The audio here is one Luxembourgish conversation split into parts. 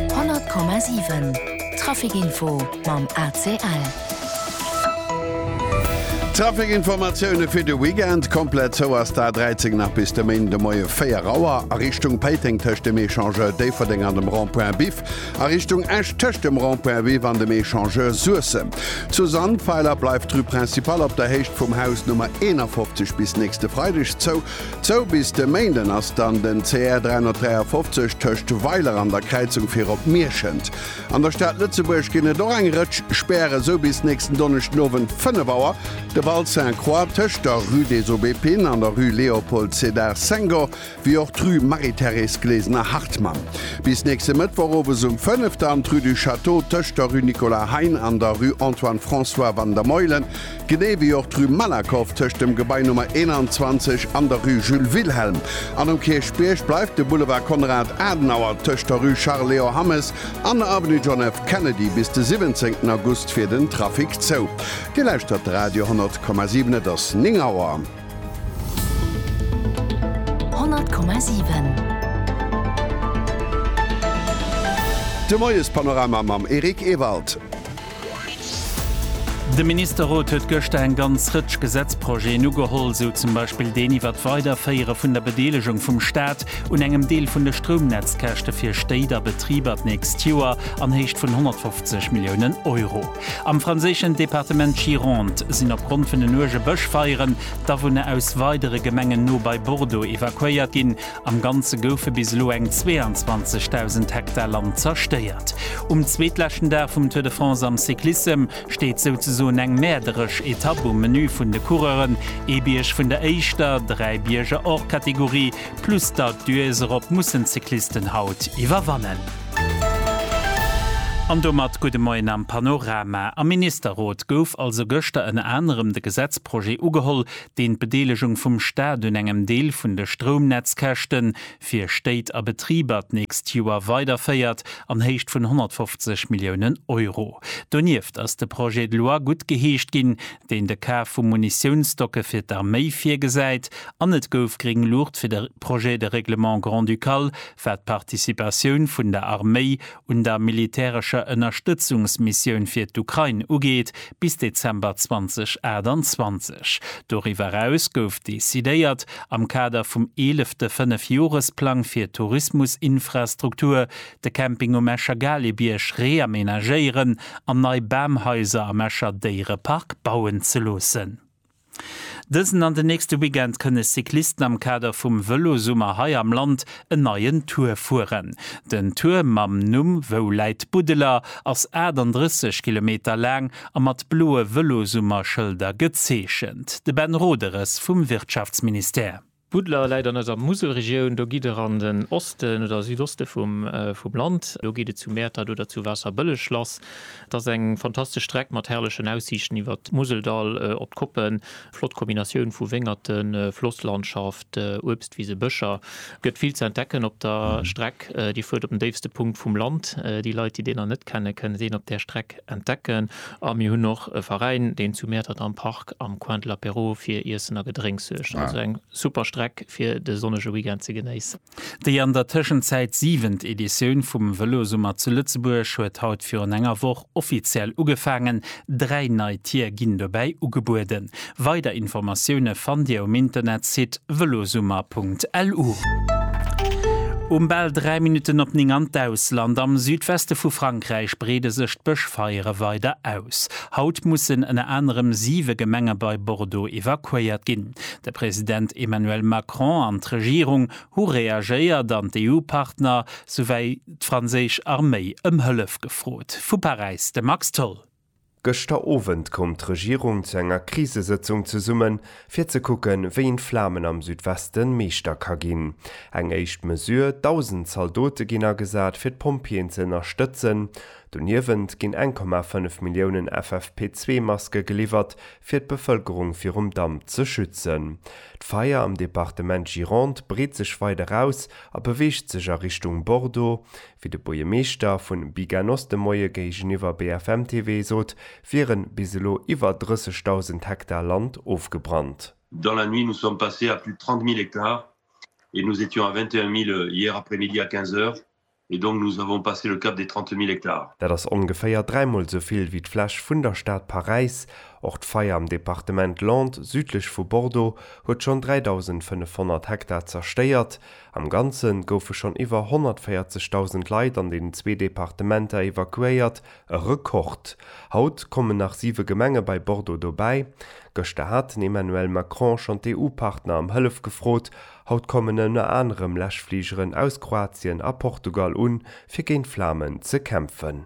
100,7 Traficinfo mam ACL. D'Traficinformatioune fir de Weekend, Komplett zou ass d'A 13 nach bis de Méinden de Moie 4 Auer a Richtung Péiteng tëscht dem Echangeur Déifferdeng an dem Rond-point Biff a Richtung Esch tëscht dem Rond-point Biff an dem Echangeur Suessem. Zu Sandweiler bleift d'Rue Principale op der Héicht vum Haus Nummer 51 bis nächste Freideg zou. Zou bis de Méinden ass dann den CR 353 tëscht Weiler an der Kräizung fir op Mierschent. An der Stad Lëtzebuerg ginn et och eng Rëtsch Spären, sou bis nächsten Donneschdenowend 5 Auer de Val Sainte-Croix tëscht der Rue des Aubépines an der Rue Léopold Sédar Senghor, wéi och d'Rue Marie-Thérèse Glesener-Hartmann. Bis nächste Mëttwoch owes um 5 dann d'Rue du Château tëscht der Rue Nicolas Hein an der Rue Antoine-François Vandermeulen. Genee wéi och d'Rue Malakoff tëscht dem Gebai Nummer 21 an der Rue Jules Wilhelm. An um Kierchbierg bleift de Boulevard Konrad Adenauer tëscht der Rue Charles Leo Hammes an der Avenue John F. Kennedy bis de 17 August fir den Trafic zou. Dir lauschtert de Radio 10,7, et ass 9 Auer. 10,7 De Moiespanorama mam Eric Ewald. De Ministerrot huet gëschter eng ganz Rëtsch Gesetzprojeten ugeholl, esou zum Beispill deen iwwer d'Weiderféiere vun der Bedeelegung vum Staat un engem Deel vun de Stroumnetzkäschte fir Stéit a Betriber d'nächst Joer an Héicht vun 150 Milliounen Euro. Am franséischen Departement Gironde sinn opgrond vun den uerge Bëschfeieren d'Awunner aus weidere Gemengen no bei Bordeaux evakuéiert ginn. Am Ganze goufe bis elo eng 22.000 Hektar Land zerstéiert. Um zweetleschten Dag vum Tour de France am Cyclissem steet souzesoen eng mäerderesch Etapp um Menü vun de Coureuren, ee Bierg vun der éischter, dräi Bierger hors catégorie, plus d'Alpe d'Huez, erop mussen d'Cyclisten haut iwwerwannen. An domat gudde Moien am Panorama. Am Ministerrot gouf also gëschter ënner anerem de Gesetzprojet ugeholl, deen d'Bedeelegung vum Staat un engem Deel vun de Stroumnetzkäschte fir Stéit a Betriber d'nächst Joer weiderféiert an Héicht vun 150 Milliounen Euro. Donieft ass de Projet de loi guttgeheescht ginn, deen de Kaf vu Munitiounsstocke fir d'Arméi virgesäit an et gouf gréng Luucht fir de Projet de règlement grand-ducal wat d'Participatioun vun der Arméi un der militärescher Ënnerstëtzungsmissioun fir d'Ukrain ugeet, bis Dezember 2028. Doriwwer eraus gouf decidéiert, am Kader vum eelefte Fënnefjoresplang fir d'Tourismusinfrastruktur, de Camping um Escher Galebierg reamenagéieren an nei Bamhaiser am Escher Déierepark bauen ze loossen. Dësen an den nächste Weekend kënne Cyclisten am Kader vum Vëlosummer hei am Land en neien Tour fueren. Den Tour mam Numm Wou läit Buddeler? ass 38 Kilometer laang a mat bloe Vëlosummer-Schëlder gezeechent. De Ben Roederes vum Wirtschaftsministère. Buddler läit an eiser Muselregioun. Do gitt der an den Osten oder Südoste vum Land. Do geet et zu Mäertert oder zu Waasserbëlleg lass. Et ass eng fantastesch Streck mat herrlechen Aussiichten iwwert d'Museldall op d'Koppen. Flott Kombinatioun vu Wéngerten, Flosslandschaft, Uebstwisen, Bëscher. Et gëtt vill ze entdecken op der Streck. Dir fuert op den déifste Punkt vum Land. Déi Leit, déi deen nach net kennen, kënnen deen op där Streck. entdecken a mir hunn och e Veräin deen zu Mäertert am Park am Coin de l'Apéro fir Iessen a Gedrénks suergt. Also eng super Streck fir de sonnege Weekend ze genéissen. Déi an der Tëschenzäit siwent Editioun vum Vëlosummer zu Lëtzebuerg huet haut virun enger Woch offiziell ugefaangen. Dräi nei Tier ginn dobäi ugebueden. Weider Informatioune fannt Dir um Internetsite velosummer.lu. Um bal 3 Minutten op 9 an d'Ausland, Am Südweste vu Frankräich breede sech d'Bëschfeiere weider aus. Haut mussen ënner anerem siwe Gemenge bei Bordeaux evakuéiert ginn. De President Emmanuel Macron an d'Regierung hu reagéiert an d'EU-Partner souwéi d'franséisch Arméi ëm Hëllef gefrot. Vu Paräis de Max Tholl. Gëschter Owend koum d'Regierung zu enger Krisesëtzung zesummen, fir ze kucken, wéi een d'Flamen am Südweste meeschter ka ginn. Eng éischt Mesure, 1.000 Zaldote ginn agesat, fir d'Pompjeeën ze ënnerstëtzen. Doniewent ginn 1,5 Milliounen FFP2-Maske geliwwert, fir d'Bevëlkerung virum Damp ze schützen. D'Feier am Departement Gironde breet sech weider aus a beweegt sech a Richtung Bordeaux. Wéi de Buergermeeschter vu Biganos de Moie géigeniwwer BFM TV sot, wiere bis elo iwwer 30.000 Hektar Land ofgebrannt. Dans la nuit nous sommes passés à plus de 30.000 hectares et nous étions à 21.000 hier après-midi à 15 heures et donc nous avons passé le cap des 30.000 hectares. Dat ass ongeféier dräimol sou vill wéi d'Fläch vun der Stad Paräis. Och d'Feier am Departement Landes, südlech vu Bordeaux, huet schonn 3.500 Hektar zerstéiert. Am Ganze goufe schonn iwwer 140.000 Leit an den zwee Departementer evakuéiert, e Rekord. Haut kommen nach siwe Gemenge bei Bordeaux dobäi. Gëschter hat den Emmanuel Macron schonn d'EU-Partner ëm Hëllef gefrot. Haut kommen ënner anerem Läschfligeren aus Kroatien a Portugal un, fir géint d'Flamen ze kämpfen.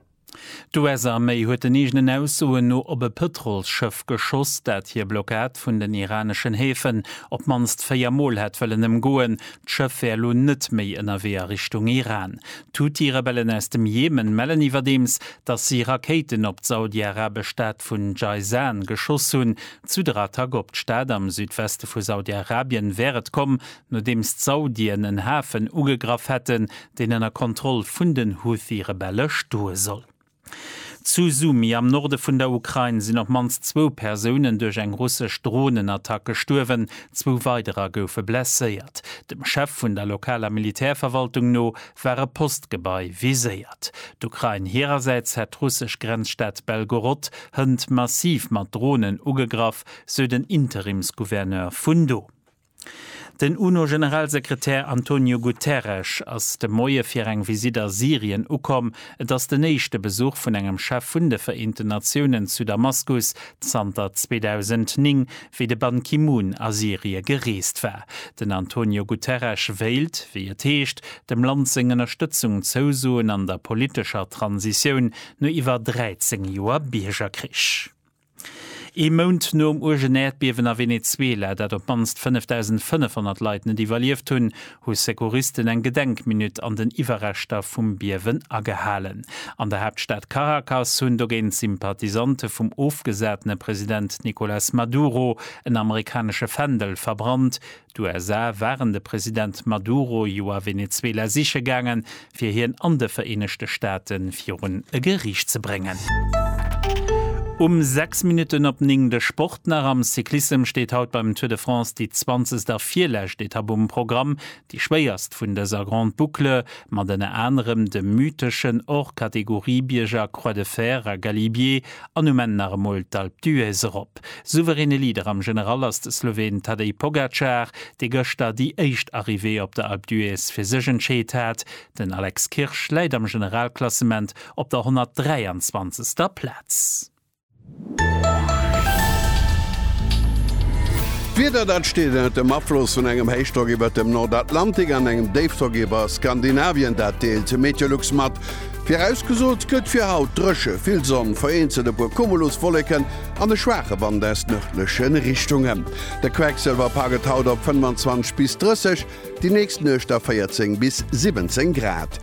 D'US-Arméi huet den eegenen Aussoen no op e Pëtrolsschëff geschoss, dat hir Blockad vun den iraneschen Häfen op d'mannst véier Mol hätt wëllen ëmgoen. D'Schëff wär elo net méi ënnerwee a Richtung Iran. D'Huthi-Rebellen aus dem Jemen mellen iwwerdeems, datt si Rakéiten op d'saudi-arabesch Stad vun Jayzan geschoss hunn. Zu der Attack op d'Stad am Südweste vu Saudi-Arabien wär et komm, nodeems d'Saudien en Hafen ugegraff hätten, deen ënner Kontroll vun den Huthi-Rebelle stoe soll. Zu Sumy am Norde vun der Ukrain sinn op mannst zwou Persounen duerch eng russesch Dronenattack gestuerwen, zwou weiderer goufe blesséiert. Dem Chef vun der lokaler Militärverwaltung no war e Postgebai viséiert. D'Ukrain hirersäits hätt d'russesch Grenzstad Belgorod hënt massiv mat Dronen ugegraff, sou den Interimsgouverneur vun do. Den UNO-Generalsekretär Antonio Guterres ass de Moie fir eng Visitt a Syrien ukomm. Et ass den éischte Besuch vun engem Chef vun de Vereenten Natiounen zu Damaskus zanter 2009, wéi de Ban Ki-moon a Syrie gereest war. Den Antonio Guterres wéilt, wéi et heescht, dem Land seng Ënnerstëtzung zousoen an der politescher Transitioun no iwwer 13 Joer Biergerkrich. Ee Mount nom uergen Äerdbiewen a Venezuela, dat op d'mannst 5.500 Leit net iwwerlieft hunn, hu Secouristen eng Gedenkminutt an den Iwwerreschter vum Biewen agehalen. An der Haaptstad Caracas hunn dogéint Sympathisante vum ofgesatene President Nicolas Maduro en amerikanesche Fändel verbrannt, D'USA waren de President Maduro jo a Venezuela siche gaangen, fir hien an de Vereenegte Staate virun e Geriicht ze bréngen. Um 6 Minutten op 9 de Sport nach, Am Cyclissem steet haut beim Tour de France déi zwanzegst a virlescht Etapp um Programm, déi schwéierst vun dëser Grande Boucle, mat ënner anerem dem mytheschen Hors-Catégorie-Bierger Croix de Fer a Galibier. An um Enn nach emol d'Alpe d'Huez erop. Souveräne Leader am General ass de Sloween Tadej Pogacar, dee gëschter déi éischt Arrivée op der Alpe d'Huez fir sech entscheet hat. Den Alex Kirsch läit am Generalklassement op der 123. Plaz. D'Wieder, dat steet ënnert dem Afloss vun engem Héichdrock iwwert dem Nordatlantik an engem Déifdrock iwwer Skandinavien, dat deelt Meteolux mat. Virausgesot gëtt fir haut dréche, vill Sonn, vereenzelt e puer Cumuluswolleken an e schwaache Wand aus nërdleche Richtungen. De Quecksëlwerpa gëtt haut op 25 bis 30, déi nächst Nuecht a 14 bis 17 Grad.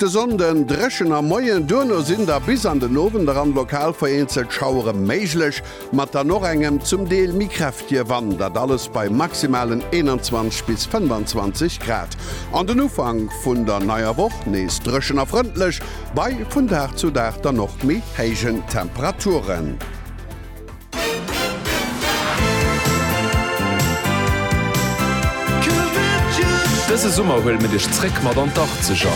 De Sonnde dréchen am Moien, duerno sinn da bis an den Owend eran lokal vereenzelt Schauere méiglech. mat dann och engem zum Deel méi kräftige Wand, dat alles bei maximalen 21 bis 25 Grad. An den Ufank vun der neier Woch nees dréchen a frëndlech, bei vun Dag zu Dag dann och méi héijen Temperaturen. Dëse Summer huele mir dech zréck mat an d'Arkzeger!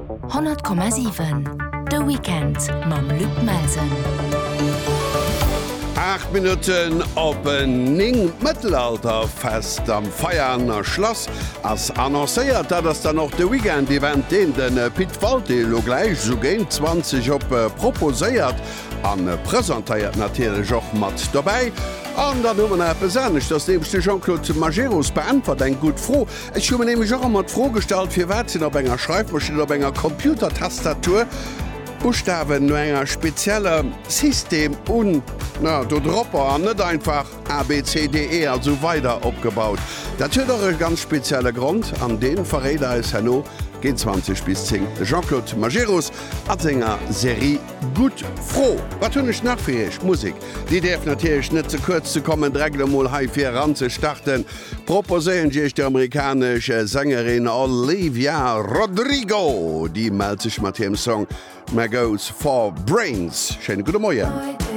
100,7 De Weekend mam Luc Melsen. Aacht Minutten op néng. D'Mëttelalterfest am Veianer Schlass ass annoncéiert. Dat ass dann och de Weekend-Event, deen de Pit Walté elo gläich esou géint 20 op proposéiert a presentéiert. Natierlech och mat dobäi. An dann hu mer nach eppes aneschters, nämlech de Jean-Claude Majerus beäntwert eng gutt Fro, Ech hu mir nämlech och ëmmer d'Fro gestallt, firwat sinn op enger Schreifmaschinn, op enger Computertastatur Buschtawen no enger spezieller System un na do dropper an net einfach ABCDE a sou weider opgebaut. Dat huet och e ganz spezielle Grond an deen verréit eis herno géint 20 bis 10 de Jean-Claude Majerus a senger Serie Gutt Fro. Wat hunn ech nach fir Iech? Musek, déi däerf natierlech net ze kuerz ze kommen. Dreckt emol hei fir eran ze starten. Proposéieren ech iech déi amerikanesch Sängerin Olivia Rodrigo. Déi mellt sech mat hirem Song Maggots for Brains. Schéine gudde Moien.